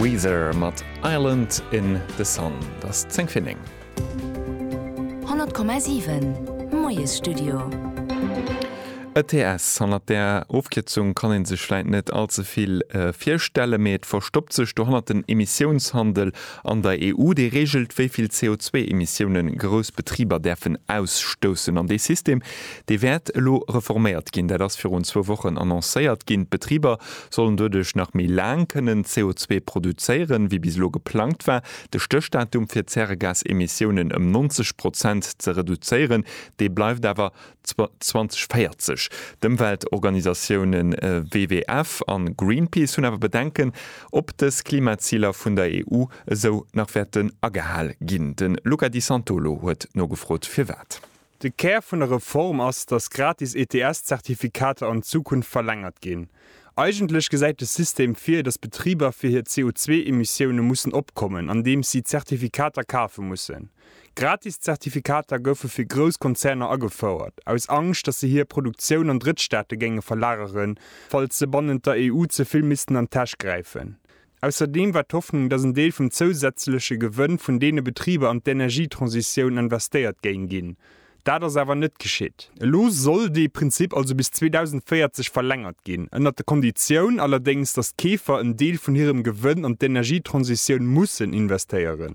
Weezer mat Island in the Sun. Et ass 10 fir 9. 100,7 Moiesstudio. ETS, hannert där Ofkierzung kann ee sech vläit net all ze vill virstellen, mee et verstoppt sech dohannert den Emissiounshandel an der EU. Dee reegelt, wéi vill CO2-Emissioune grouss Betriber däerfen ausstoussen. An dee System, dee wäert elo reforméiert ginn. Dat ass virun zwou Wochen annoncéiert ginn. D'Betriber sollen doduerch nach méi laang kënnen CO2 produzéieren, wéi bis elo geplangt war. De Stéchdatum fir d'Zäregasemissiounen ëm 90 Prozent ze reduzéieren, dee bleift awer 2040. D'Ëmweltorganisatioune WWF a Greenpeace hunn awer Bedenken, ob dës Klimaziler vun der EU esou nach wäerten agehal ginn. De Luca Di Santolo huet nogefrot, firwat. De Kär vun der Reform ass, datt gratis ETS-Zertifikater an Zukunft verlängert ginn. Eigentlech gesäit de System vir, datt Betriber fir hir CO2-Emissioune mussen opkommen, andeems si Zertifikater kafe mussen. Gratis Zertifikater goufe fir grouss Konzerner agefouert, aus Angscht, datt se hir Produktioun an Drëttstaate géinge verlageren, falls se bannent der EU ze vill missten an d'Täsch gräifen. Ausserdeem war d'Hoffnung, datt en Deel vum zousätzleche Gewënn vun deene Betriber an d'Energietransitioun investéiert géing ginn. Dat ass awer net geschitt. Elo soll dee Prinzip also bis 2040 verlängert ginn, ënnert der Konditioun allerdéngs, datt d'Keefer en Deel vun hirem Gewënn an d'Energietransitioun mussen investéieren.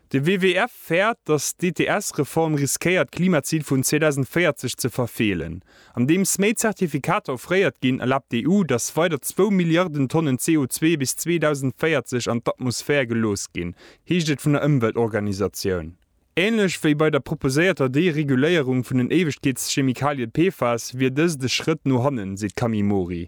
De WWF fäert, datt d'ETS-Reform riskéiert d'Klimazil vun 2040 ze verfeelen. Andeems méi Zertifikater offréiert ginn, erlaabt d'EU, datt weider zwou Milliarden Tonnen CO2 bis 2040 an d'Atmosphär gelooss ginn, heescht et vun der Ëmweltorganisatioun. Änlech wéi bei der proposéierter Dereguléierung vun den Éiwegkeetschemikalie PFAS wier dëst e Schrëtt no hannen, seet d'Camille Mori.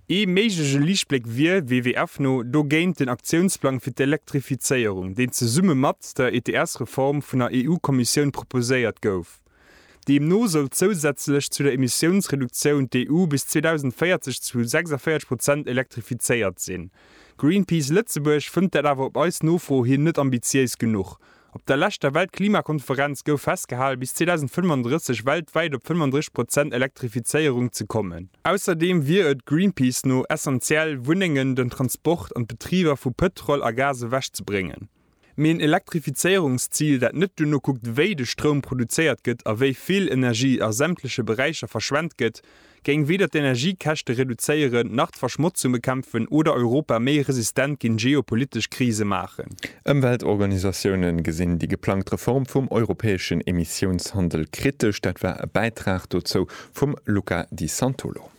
Ee méiglege Liichtbléck wier, WWF no, dogéint den Aktiounsplang fir d'Elektrifizéierung, deen zesumme mat der ETS-Reform vun der EU-Kommissioun proposéiert gouf. Deemno soll zousätzlech zu der Emissiounsreduktioun d'EU bis 2040 zu 46 Prozent elektrifizéiert sinn. Greenpeace Lëtzebuerg fënnt dat awer op eis Nofro hin net ambitiéis genuch, Op der leschter Weltklimakonferenz gouf festgehalen, bis 2035 weltwäit op 35 Prozent Elektrifizéierung ze kommen. Ausserdeem wier et Greenpeace no essentiell, Wunnengen, den Transport an d'Betriber vu Pëtrol a Gas ewech ze bréngen. Mee en Elektrifizéierungszil, dat net duerno kuckt, wéi de Stroum produzéiert gëtt a wéi vill Energie a sämtleche Beräicher verschwent gëtt, géing weder d'Energiekäschte reduzéieren, nach d'Verschmotzung bekämpfen oder Europa méi resistent géint geopolitesch Krise maachen. Ëmweltorganisatioune gesinn déi geplangt Reform vum europäeschen Emissiounshandel kritesch. Dat war e Bäitrag dozou vum Luca Di Santolo.